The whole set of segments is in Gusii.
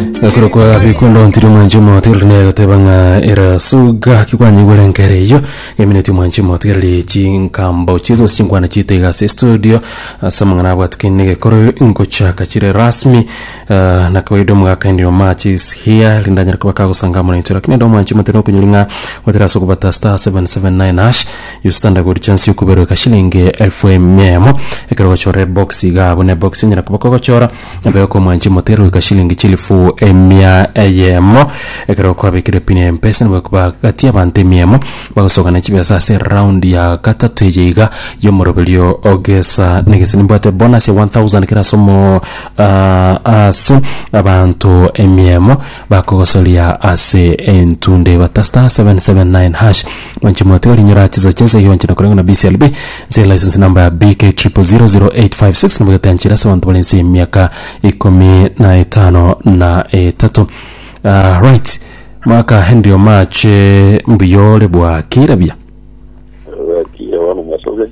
ekorokwa bikundo ntiri omwanchi omoto erori naye goteba ng'a erasuga kikwanyigwere nkere eyo emineti omwanchi omoto erori chinkambo chiaito gose chinkwana chiaito iga ase estudio ase amang'ana abwatikani na egekoro ngochaka chire rasmi ah, na kawaida omogaka ndio match is here rinde anyare koba kagosangamuna intwe lakini ande omwanchi omoto na okonyori ng'a gotera ase okobata star 779 hash you stand a good chance yokoberoka shilingi elfu emia emo ekero ogochora ebox iga buna ebox onyara koba kogochora Ebe okomwancha mote eroika shilingi chilifu emia eyemo, ekero kwabekire pini ya Mpesa nigo ekobagatia abanto emia emo bagosoka ne chibiasa ase eround ya gatato eye iga y'omoroberio ogesa na egese. Nimbwate bonus ya 1000 kera ase omo ah, ase abanto emia emo. Bakogosoria ase entunde bata star 779 hash mwanche motiga orinyora chisa chense iga gwanchera koreng'wa na BCLB nse license number BK 000856 nigo etanchire ase abanto bare nse emiaka ikomi na etano na etato Ah, right mwaka Henry Omache mbuya ore bwaki rabia Bwakire bono masobe.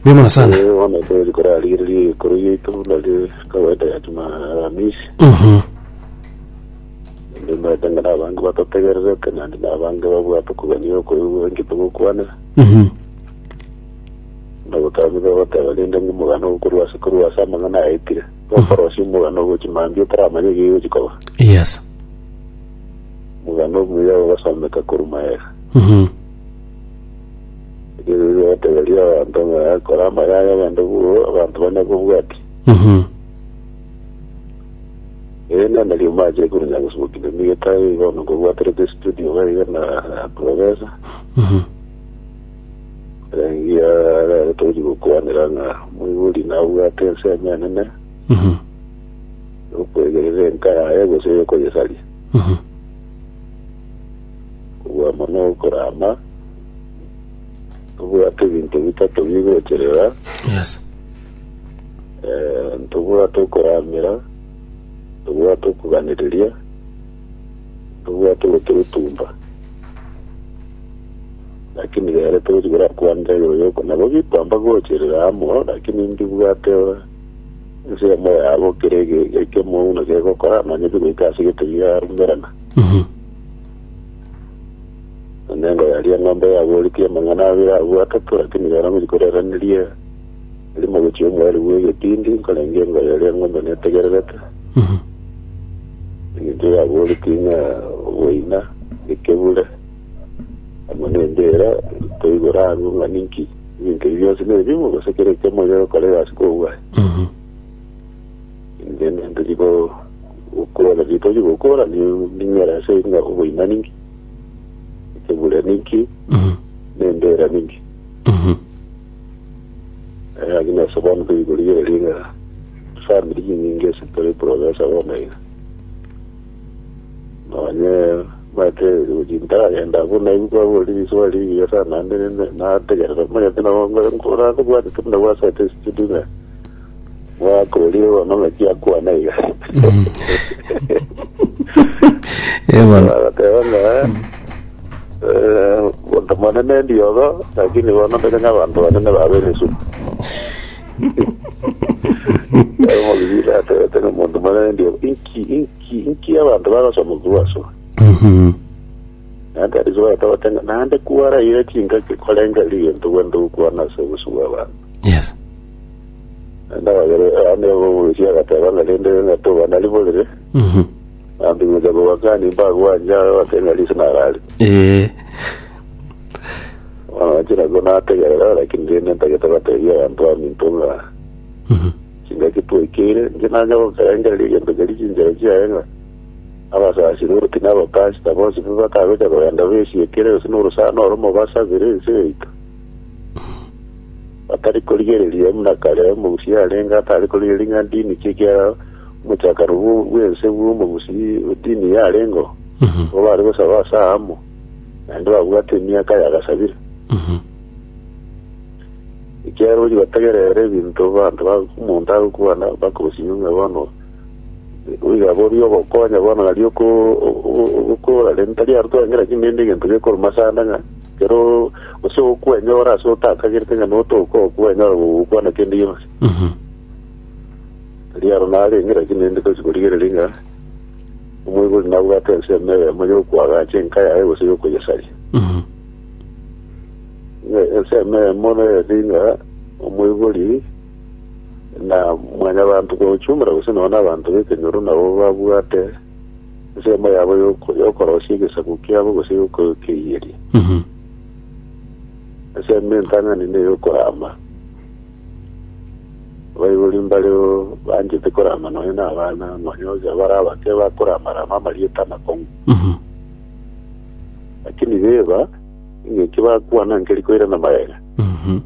Mbuya mono sana. Eh, bono ekwezi korarigereria egekoro giaito nario kawaida ya juma aramisi Mhm. ndimete ng'a nabange batotegererete naende nabange babwate okogania okoigwa inki togokwana Mhm. nagotamete goteba rende ng'a omogano okorwa ase korwa ase amang'ana aetire okorosia omogano ogochi mambia otaramanya egegochi koba Yes. omogano omuya ogasomeka korwa maega Mhm. Erio nigo ogoteberia abanto ng'a kora amayaga agende buru abanto bane kobwati. Mhm. Ere nende riuma ache ekuru Nyagusuguki ne Migeta igo nokobwaterete studio baiga na Professor. Mhm. Erengia rero toji gokwanera ng'a moibori nabwate ensemo enene Mhm. yokwegerera enka yaye gose yokoyesaria. Mhm. kobua mono okorama, tobwate ebinto bitato bigocherera, Yes. eh, tobwate okoramera, tobwate okuganereria, tobwate ogotorutumba. Lakini rero tochi gorakwanire igoro yoko nabo bikwamba gocherera amo, lakini ndibwate ensemo yabo kere ege- ekemo buna kegokora, nonye bigoika ase egete biarumerana. Mhm. Onengo yaria eng'ombe yaboretie amang'ana abere agwo atato, lakini rero nkorerenerie eri mogochie omweri bw'egetindi, nkorenge engoye eria eng'ombe netegererete, Mhm. eng'encho yaboretie ng'a oboina ekebure amo nembira ntoigora ang'o ng'a ninki ebinto ebi bionsi nebimu gose kera ekiamo egekokora egasi kobua Mhm. Inche ntoria gokora ritoria gokora ning'era ase ng'a oboima ninki, ekebure ninki, na embera ninki. Eh, lakini ase bono toiyi korigereria ng'a family chinyinge ase tore progresa bono iga. Nonye omanyete gochi ntaragenda abwo naigwe kwaborire riswali rigiya sana naende nategerera omanyete nabo nkoragobwatete buna gwasete studio ng'a Mwakorire bono ng'aki akwane iga. Ebono. Agateba ng'a eh, monto monene ndiogo, lakini bono ndore ng'abanto banene babere esumu. Ero omogigiri atebete ng'a monto monene ndiogo, inki inki inki abanto bagosoma kubaso. Mhm. Naende Yesu agatebete ng'a naende kwaraire chingaki korengeri egento gwende gokwana ase obosu bw'abanto. Yes. Naende abagere abana igo bagokwesia, agateba ng'a rende ng'a tobana riborere, Mhm. na mbing'eta kobakani mbagwanje aro bake ng'a riso narare. Ee. Bono nache nabwo nategerera, lakini rende ntagete batebia abanto baminto ng'a Mhm. chingaki twaikeire, inche nanya gokerengereria egento keria chinchera chiaye ng'a abasasiri oti na abapasita bonsi pi batagocha kogenda besiekire, gose na orosana oromo basabire ense yaito. Batari korigereria buna kare omogusi arenge atari korigereria ng'a ndini ki ekiagera omochakano bw'ense bw'omogusi o dini yarengeo, nigo bare gosaba ase aamo, naende babwate emiaka y'agasabire. Ekiagera oria otegerere ebinto abanto omonto agokwana bakosinywa ng'a bono oiga boria ogokonya bono nari ogokoora, rende tari arutwa ng'a kera kende egento gekoruma ase ande ng'a Ekero gose okwenyora ase otakagerete ng'a notoka okwo wenyora gokwana kende gionsi. Mhm. Tari aro narenge, lakini rende tochi korigereria ng'a omoibori nabwate ensemo eyemo y'okoagacha enka yaye gose y'okoyesaria. Mhm. Ng'a ensemo eyemo nereti ng'a omoibori na mwanyabanto kwa ujumla gose nonye nabanto b'ekenyoro nabo babwate ensemo yabo y'oko- y'okorosia egesaku kiabo gose y'okokeiyeri. Mhm. Ensemo entang'ani ney'okorama. Abaibori mbareo banchete korama nonya na abana, nonya onye bare abake bakoramarama amarieta amakong'u. Mhm. Lakini beba, eng'enki bakwana nkeri koirana magega. Mhm.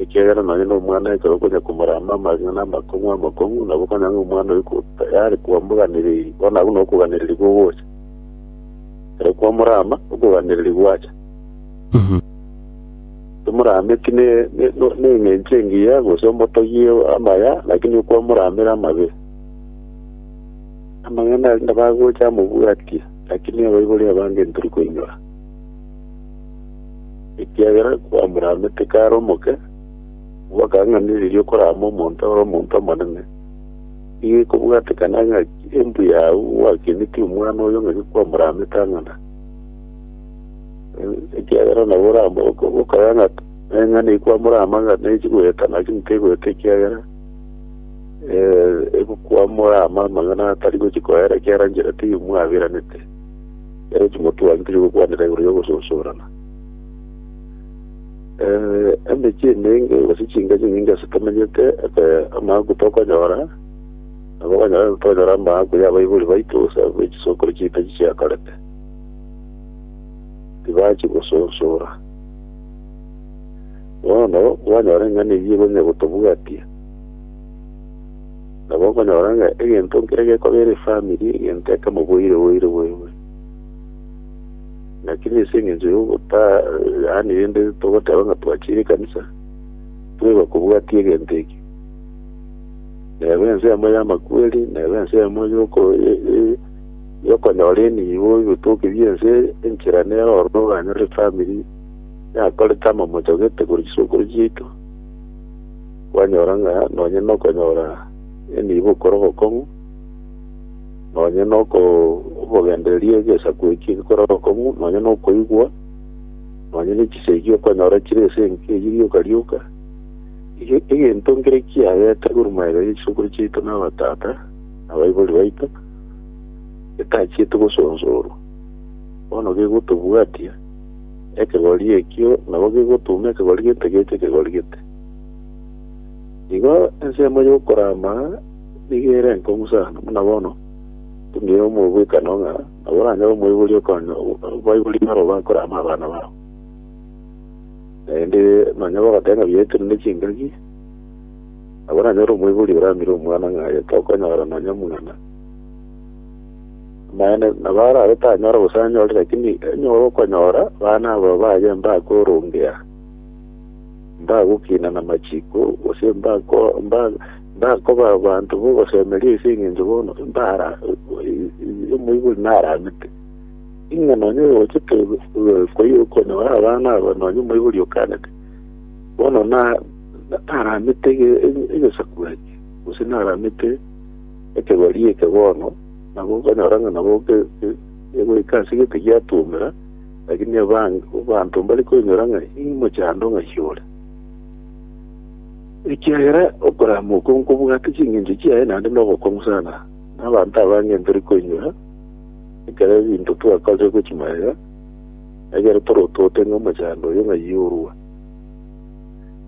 ekiagera nonye nomwana ekero okonya komorama amang'ana amakong'u amakong'u, nabo okanya ng'a omwana oyo ko- tayari kwamoganereiri, bono agwo nokoganereria kogocha. Ekero kwamorama, okoganereria gwacha. Tomorame ki ne- ne- no- neng'encho engiya, gose omotogie amaya, lakini okwamoramera amabe. Amang'ana aria nabagocha amobwatie, lakini abaibori abange ntiri koinyora. ekiagera kwamoramete kare omoke, gwakang'anireria okorama omonto ore omonto omonene. Nigo ekobwatekana ng'aki embuya agwo gwakenetie omwana oyo ng'aki kwamoramete ang'ana. Eh, Ekiagera nabo orama oko- okaya ng'a eng'ana ikwamorama ng'a nechi goeta naki ntegoeta ekiagera eh, egokwamorama amang'ana atari gochi koera ekiara nchera teiyo mwaberanete. Ere Timoteo agitirie gokwanera igoro y'ogososorana. Eh, emechie emenge gose chingache nyinge ase tomenyete eke amaango tokonyora, nabo okonyora tokonyora amaango y'abaibori baito gose abwo chisokoro chiaito chiakorete. Tibachi gososora. Bono kwanyora eng'ana eyio konya gotobwatia. Nabo okonyora ng'a egento nkere gekobera efamiri egento ekemo boire boire boirwe. Naki nese engencho y'ogotaa, yaani rende togoteba ng'a twachire ekanisa, tweba kobwati egento eke. Neba ense yamo y'amakweri, neba ense yamo y'oko y'okonyora enibo ebitoki bi'ense eye, enchera nero ororo oranyore efamiri yakorete amamocha gete korwa chisokoro chiaito. Kwanyora ng'a nonye nokonyora enibo okore obokong'u, nonye nokobogendereria egesaku eki gekore obokong'u, nonye nokoigwa, nonye ne chisegi okonyora chire ase enka eyio rioka rioka, Ege- egento nkere kiagete korwa magega ya chisokoro chiaito na abatata na abaibori baito, getachiete gosonsorwa, bono gegotobwatia ekegori ekio, nabo gegotuuma ekegori gete gecha ekegori gete. Igo ensemo y'okoraama nigo ere enkong'u sana, buna bono tong'eire omobwekano ng'a nabo oranyare omoibori okoonya abaibori barabwo bakoraama abana babo. Naende nonya bagoteba ng'a buya ekero ne chingaki, nabo oranyore omoibori oraamire omwana ng'a aye tokonyora nonya omong'ina. Amaene nabo arabe tanyore gose anyore lakini enyora okonyora abana abo baye mbakorongea. mbagokina namachiko, gose mbako- mba- mbakoba abanto bogosemeria ase eng'encho bono mbara omoibori naramete ing'a nonye ogochete koyokonyora abana aba nonye omoibori okanete bono na na- naramete ege- ege- egesaku eke gose naramete ekegori eke bono nabo okonyora ng'a nabo ge- ge- egoika ase egete giatomera Lakini abange abanto mbare koinyora ng'a imochando ng'ai ore, ekiagera okorama okwo nkobwate chingencho chiaye naende nobokong'u sana. Na abanto abange ntari koinyora ekero ebinto twakorire gwe chimagega, ekero torotote ng'a omochando oyo ng'ai orua.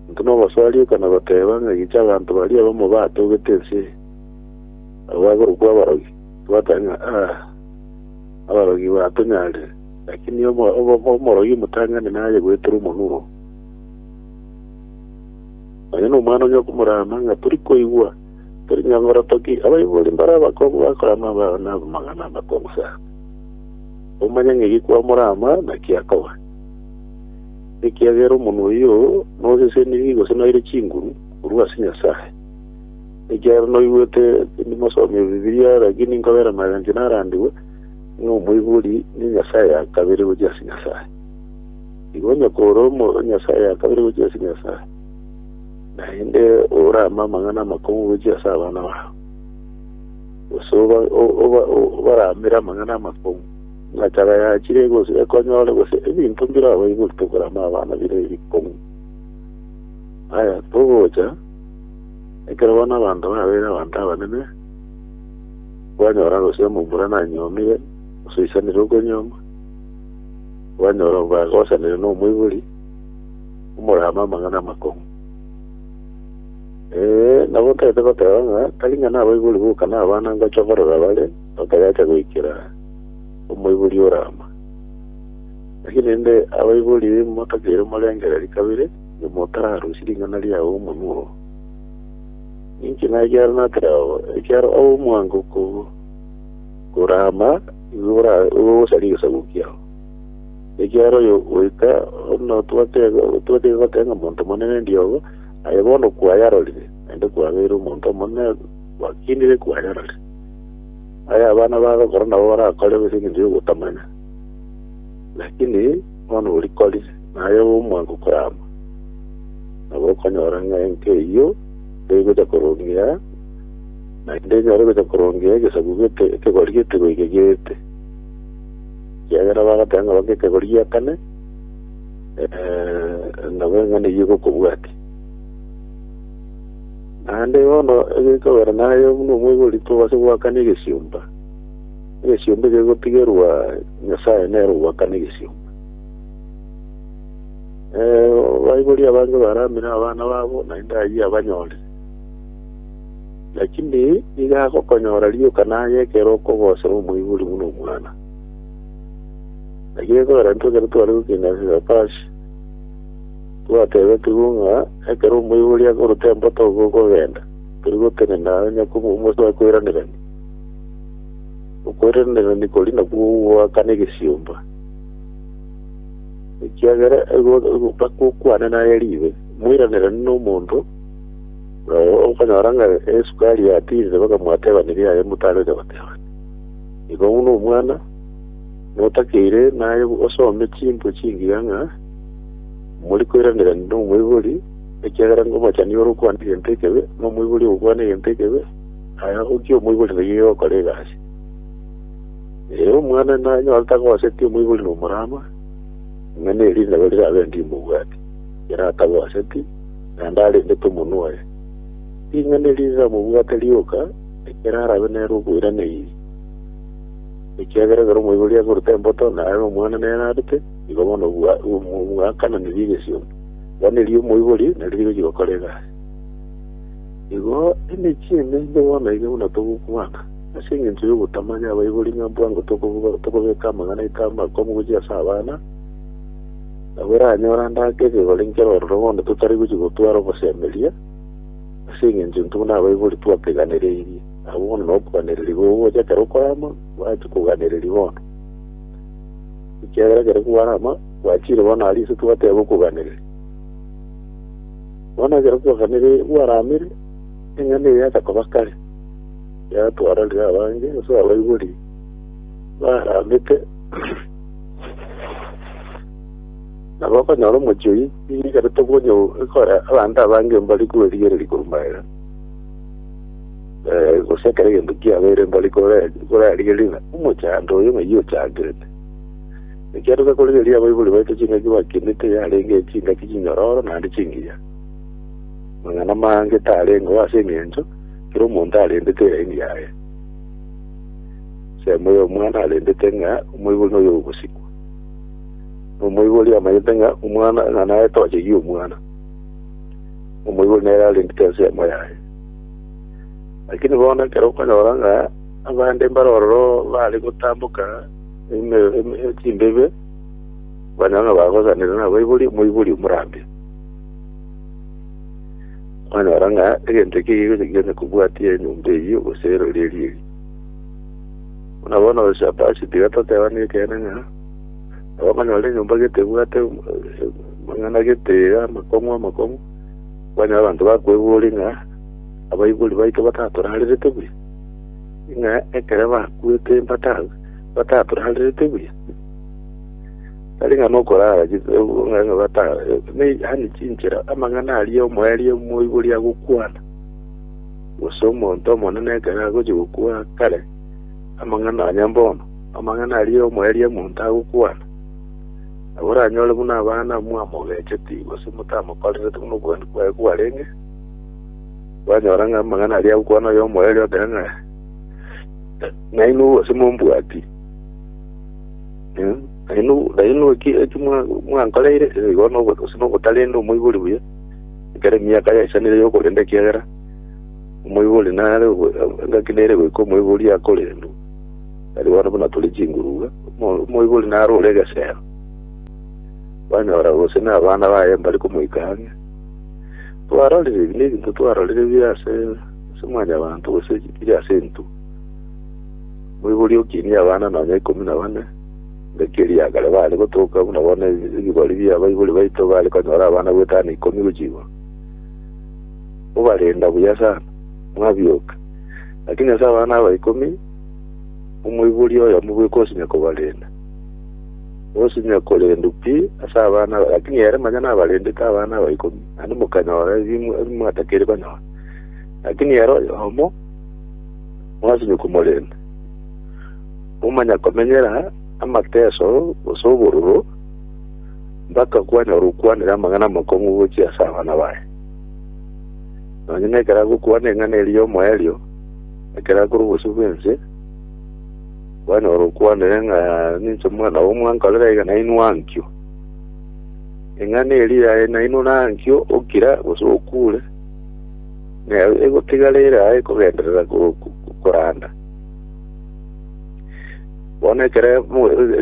Intwe nobasarieka na goteba ng'a gicha abanto baria abamo batogete ense eye, abo bagorokwa abarogi, twateba ng'a, Aa! Abarogi batonyare, lakini omorogi omotang'ani naye goetera omonuro. Nonya nomwana onye okomorama ng'a tori koigwa, tori nyangora toki, abaibori mbare abakongu bakorama abana amagana amakongu sana. Omanye ng'a eki kwamorama naki akoba. Ekiagera omonwa oyio nosesenirie gose noire chinguru korwa ase Nyasae. Ekiagera noigwete tindi mosomi o Bibilia, lakini nkobera amagancho narandigwe, ng'a omoibori ne nyasae ya kabere gochia ase Nyasae. Igo onye kore omo nyasae ya kabere gochia ase Nyasae, naende orame amang'ana amakong'u gochia ase abana bao, gose oba- o- oba- o- obaramere amang'ana amakong'u, ng'a chaba yachire gose ekonyore gose ebinto mbire abaibori tokorama abana bire ebikong'u. Aya togocha Ekero bono abanto babeire abanto abanene, kwanyora gose omomura nanyuomire, gose oisanire okonyuoma, kwanyora omogaka osanire na omoibori, omorama amang'ana amakong'u. Eh, nabo otagete goteba ng'a tari ng'a nabaibori boka na abana ngocha korora bare, otayacha goikera omoibori orama. Naki rende abaibori motakeire morengereria kabere, Inwe motararusie ring'ana riao omonwa oo, ninche naye ekiagera natire ao, ekiagera ao omwango ko- korama nigo ora- nigo ogosaria egesaku kiao. Ekiagera oyo goika buna otwate otwate goteba ng'a monto monene ndiogo, aye bono kwayarorire, naende kwabeire omonto omonene gwakinire kwayarorire. Aye abana bagokora nabo barakore gose egencho giogotamanya, lakini bono orikorire. Naye omwango korama, nabo okonyora ng'a enka eyio tegocha korongia, naende enyare gocha korongia egesaku gete ekegori gete goika gete, ekiagera bagateba ng'a bake ekegori gia kane, eh, nabo eng'ana eyio egokobwati. Naende bono egekogera naye buna omwegori tobase goakana egesiomba, egesiomba ekegotigerwa Nyasaye nere ogwakana egesiomba. Eh, baibori abange baramire abana babo, naende ayio abanyore. Lakini nigo agokonyora rioka naye ekero okogosera omoibori buna omwana. Lakini ekogera intwe ekero tware gokina Sefashi, twatebetigwe ng'a ekero omoibori akorute emboto igo okogenda, tori gotenena onye komomosoe koiranerania. Okoiranerania koria nakwo gogoakana egesiomba. ekiagera bakokwana naye ribe moiranere nomonto okonyora ng'a esukari yatinde bakamwatebaneria aye motare ocha gotebana igo buna omwana notakeire naye osome chimbo chingiya ng'a mori koiranera nomoibori ekiagera ngomochani ore okwana egento ekebe nomoibori ogokwana egento ekebe aye okia omoibori naiyo ogokora egasi Ee, omwana nanyore tagoseti omoibori nomorama, ng'a neriinebo rirabe ndimobwati, ere atagoseti, naende arendete omonwa oye. Ring'ana eri riramobwate rioka, ekero arabe nere okoirana ii. Ekiagera ekero omoibori akorute emboto, naye omwana nere arute, igo bono obwa- omo- obwakananirie egesiomo. Bono erio omoibori nario rigochi gokora egasi. Igo emechie emenge bono iga buna togokwana. Ase engencho y'ogotamanya abaibori ng'a bwango tokobeka amang'ana aito amakomu gochia ase abana, nabo eranyore ande ake ekegori enkero ororo bono totari gochia gotwara obosemeria, ase engencho intwe buna abaibori twakeganereirie. Nabo bono nokoganereria gogocha ekero okore amo, bwachia koganereria bono. Ekiagera ekero kware amo, gwachiire bono aria ase twateba okoganereria. Bono ekero kwaganereire, kwaramire, eng'ana eye yacha koba kare. Yatwararire abange ase abaibori barambete, na bakonyora omochie oyio oikerete obonya ekore abanto abange mbari kwerigereria korumaera, eh, gose ekero egento kiabeire mbari kore- korarigereria ng'a omochando oyo ng'ai ochangerete. Ekiagera gose korigereria abaibori baito chingaki bakinete yarenge chingaki chinyororo naende chingiya. Amang'ana amange tarengeo ase eng'encho kera omonto arendete eraini yaye. Ensemo y'omwana arendete ng'a omoibori noyo ogosikwa. Na omoibori amanyete ng'a omwana ng'a naye toche gie omwana. Omoibori nere arendete ensemo yaye. Lakini bono ekero okonyora ng'a abande mbare ororo bare gotamboka eme- eme- chimbebe okonyora ng'a bagosanire nabaibori omoibori omorambia Mwanyora ng'a egento eke gigocha gionsi kobwatia enyomba eyio gose eroreri eri. Buna bono gose aba ase tiga totebane ekeene ng'a nabo okonyora enyomba gete ebwate um- eh, amang'ana gete iga amakong'u amakong'u kwanyora abanto bakweboria ng'a abaibori baito batatorarerete buya ng'a ekero bakwete bata batatorarerete buya Tari ng'a nokoraara chitugo ng'a ng'ebata neihane chinchera amang'ana aria omoerio moibori agokwana, gose omonto omonene ekero agochia gokwa kare amang'ana onye mbono, amang'ana aria omoerio omonto agokwana, nabo oranyore buna abana mwamogecheti gose motamokorereti buna obogeni bwaye bwarenge, kwanyora ng'a amang'ana aria agokwana oyo omoerio ekero ng'a nainwe gose mombwati. Nainwe eki mwankoreire nigo gose nobotarende omoibori buya, ekero emiaka yaisanire y'okorenda, ekiagera omoibori nare engaki nere goika omoibori akorendwe, tari bono buna tore chingurugwa, omoibori nare ore egesero. Kwanyora gose nabana baye mbare komoika ang'e. Twarorire ebi nebinto twarorire bire ase mwanyabanto gose bire ase intwe. Moiborie okinie abana nonya ikomi na bane, ngaki erio akare baare gotoka buna bono ebigori bia baibori baito bare konyora abana bwetano ikomi gochia igoro. Mobarenda buya sana, mwabioka. Lakini ase abana aba ikomi, omoiborie oyomo bweka osinya kobarenda. Osinya korendu pi ase abana aba, lakini ere manya nabarendete abana aba ikomi, naende mokanyora ebi mwa- ebi mwatakeire konyora. Lakini ere oyomo Mwasibwa komorende, momanya komenyera amateso gose obororo, mpaka kwanyora okwanire amang'ana amakong'u gochia ase abana baye. Nonya nekero agokwana eng'ana eria y'omoerio, ekero akorwa obosio bw'ense, kwanyora okwanire ng'a ninche omwana oo mwankorera iga nainwe ankio. Eng'ana eria yaye nainwe nankio, okira gose okure. Nao egotigara ere aa ekogenderera koranda, bono ekero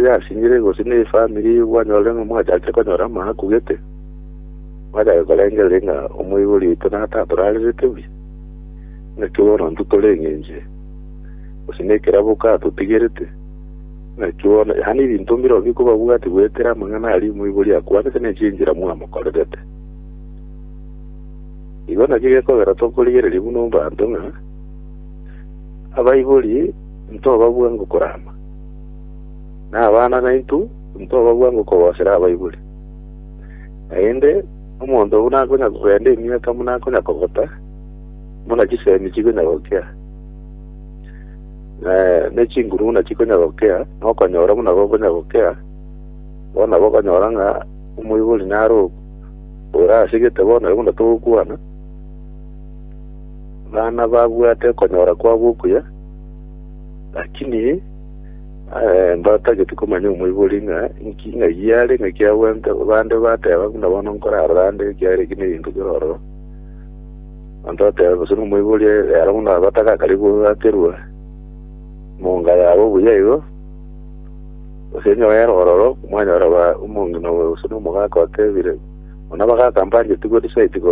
yasinyire gose ne efamiri kwanyora ng'a mwachakire konyora amaaku gete, mwachaka korengereria ng'a omoibori oito natatorarerete buya, naki bono intwe toreng'enchire, gose ne ekerabo katotigerete, naki bono yaani ebinto mbirobio bikobabwatia goetera amang'ana aria omoibori akwanete ne chinchera mwamokorerete. Igo nakio gekogera tokorigereria buna ombanto ng'a abaibori ntobabua ngokorama, na abana naintwe ntobabua ngokogosera abaibori. Naende omonto buna akonya kogenda emiaka buna akonya kogota, buna chisemi chikonya gokea, na ne chinguru buna chikonya gokea, na okonyora buna gokonya gokea, bono nabo okonyora ng'a omoibori naro Orasegete bono ekero togokwana, bana babwate okonyora kwabo okuya, lakini eh, mbatageti komanya omoibori ng'a inki ng'ai are ng'aki agwente bande bateba buna bono nkorarora ande ekiagera eki neginto kerororo banto bateba gose nomoibori ero buna batagakari gogakerwa monga yabo buya igo Gose onye baere ororo, mwanyora ba omong'ina oyo gose nomogaka otebire, Muna bagaaka mbanchetigwe, tisaetigwe,